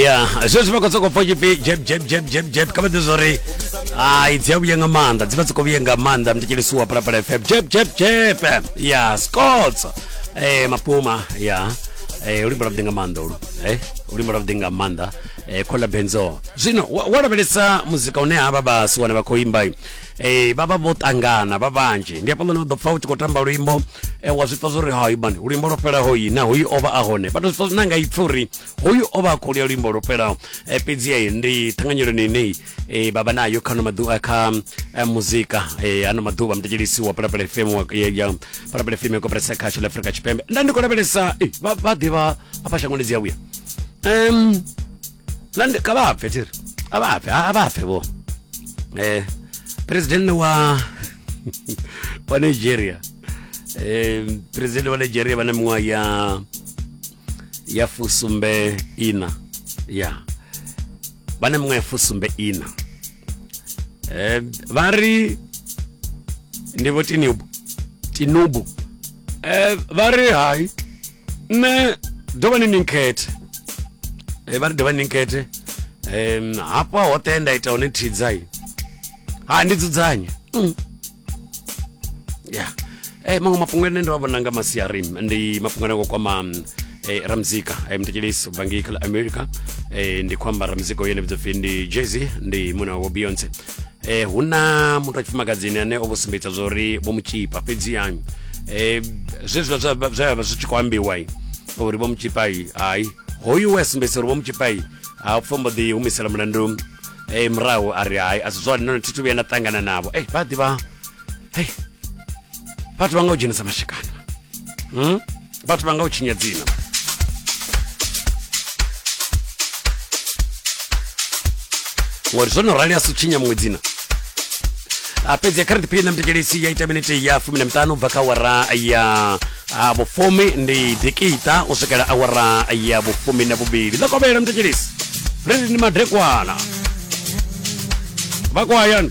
ya zwe zwi vha khou sokou pfa tshipfi jeb jeb jeb jeb jeb kha vha ḓi zwo ri ai dzi a vhuya nga maanḓa dzi vha dzi khou vhuya nga maanḓa mtekelisiwa phalaphala fm jeb jeb jeb ya scots eh mapuma ya eh ulimba lwa nga maanḓa ulu eh ulimba lwa nga maanḓa eh khola benzo zwino wa wa lavhelesa muzika une ha vha vhasi wane vha khou imba Ee, vha vha vho ṱangana vha vhanzhi ndi hafhaḽani u ḓo pfa u tshi khou tamba luimbo eh, wa zwi pfa zwo ri hai mani luimbo lwo fhelaho yi na hoyu o vha a hone vha to zwi pfa zwine a nga ipfa uri hoyu o vha a khou lia luimbo lwo fhelaho Eh, fhedzi eh, ndi ṱhanganyeloni ine eh, vha vha nayo kha ano maḓuvha kha eh, muzika eh, ano maḓuvha muthetshelisi wa palapala fm wa- ya- ya palapala fm ya koperesa khasho la afrika tshipembe nda ndi khou lavhelesa eh, vha vha ḓivha afha shangoni dzi a vhuya um na ndi- kha vha bve thiri a vha bve a vha bve vho eh president wa wa Nigeria eh president wa Nigeria vha na miṅwaha ya ya fusumbe ina ya vha na miṅwaha ya fusumbe ina eh vha ri ndi vho tinubu tinubu eh vha ri hai nṋe dovhani ni nkhethe eh, vha ri dovhani ni nkhethe um hafha hoṱhe nda ita hone thidzai ha ndi dzudzanye mm. ya eh, maṅwe mafhungo ane ndo a vhona nga masiari ndi mafhungo ane kwama mm, eh, ramzika eh, mtekelisi ubva ngei khala america eh, ndi khou amba ramzika uyo ene vhidzopfi ndi jezi ndi muna wa beyonce eh hu na muthu wa tshifumakadzini ane o vho sumbedza zwa uri vho mu tshipa fhedziha eh zwezwiḽa zwa vha zwi tshi khou ambiwa uri vho mu tshipa hayi hoyu we a sumbedzisa uri vho mu tshipa ha pfo mbo ḓi humisela mulandu eh murahu a ri hayi a si zwone none thi thu vhuya nda ṱangana navho eh vha ḓivha hei vhathu vha nga u dzhenisa mashikana hmm? vhathu vha nga u tshinya dzina ngori zwo no rali a si tshinya muṅwe dzina a fhedzi ya current period na mtekelisi ya ita minete ya fumi na miṱanu bva kha awara ya a vhufumi ndi dikita u swikela awara ya vhufumi na vhuvhili ḽa kovhela mtekelisi ri ndi madekwana vha kwayani